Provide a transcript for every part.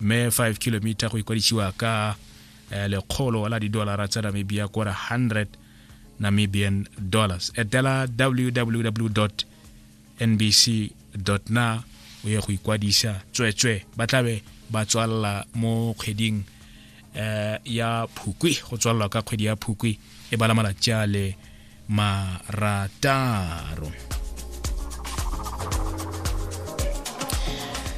mme 5 kilomita go ikwadišiwa ka eh, lekgolo la didolara tsa namibia kora 100 namibian dollars etela www nbc na o ye go ikwadisa tswetswe ba tlabe ba tswalela mo kgweding eh, ya phukwi go tswalela ka kgwedi ya phukwi e bala malatsi a le marataro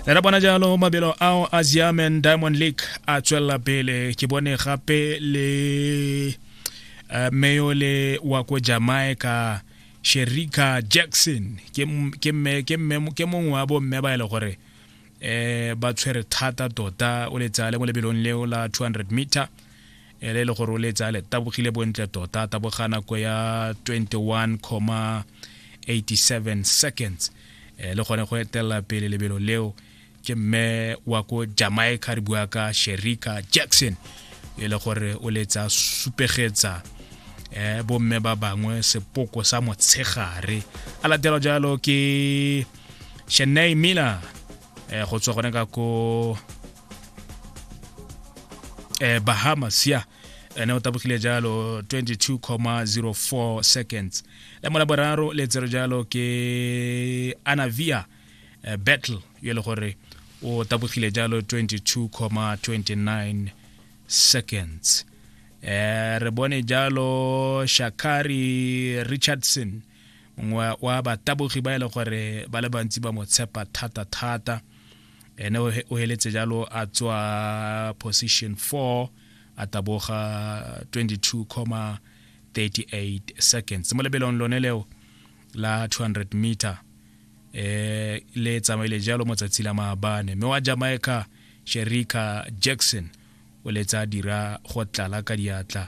re ra bona jalo mabelo ao a german diamond league a tswelela pele ke bone gape le uh, meyole wa ko jamaica sherika jackson ke m- ke mme- ke mme- ke mongwe wa bomme ba e le gore eh ba tshwere thata tota o letsale mo lebelong leo la 200 meter ela e le gore o le tsaya le tabogile bontle tota taboga nako ya 21,87 seconds e le gone go etelela pele lebelo leo ke mme wa ko jamaica re bua ka sherika jackson e le gore o le tsaya supegetsa eh bomme ba bangwe sepoko sa motshegare a latela jalo ke Chennai Miller eh go tswa gone ka ko eh, bahamas ya ene o tabogile jalo 22,04 seconds le mo la boraro le tsero jalo ke anavia eh, battle yo e le gore o tabogile jalo 22,29 seconds eh, re bone jalo shakari richardson mongwe wa batabogi ba e le gore ba le bantsi ba mo tshepa thata-thata ene o heletse jalo a tswa position 4 a taboga 22,38 seconds mo lebelong lone leo la 200 meter eh le tsamaile jalo mo tsatsi la maabane mme wa jamaica sherika jackson o letsa a dira go tlala ka diatla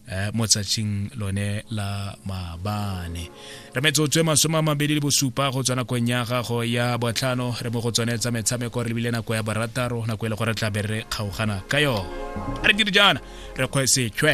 eh, mo tsatshing lone la maabane re metsotso e masome a mabedi le bosupa go tswa nakong ya gago ya botlhano re mo go tsone tsa metshameko re lebile nako ya barataro nako e le gore tla be re kgaogana ka yone a re dire jaana re kgwesethwe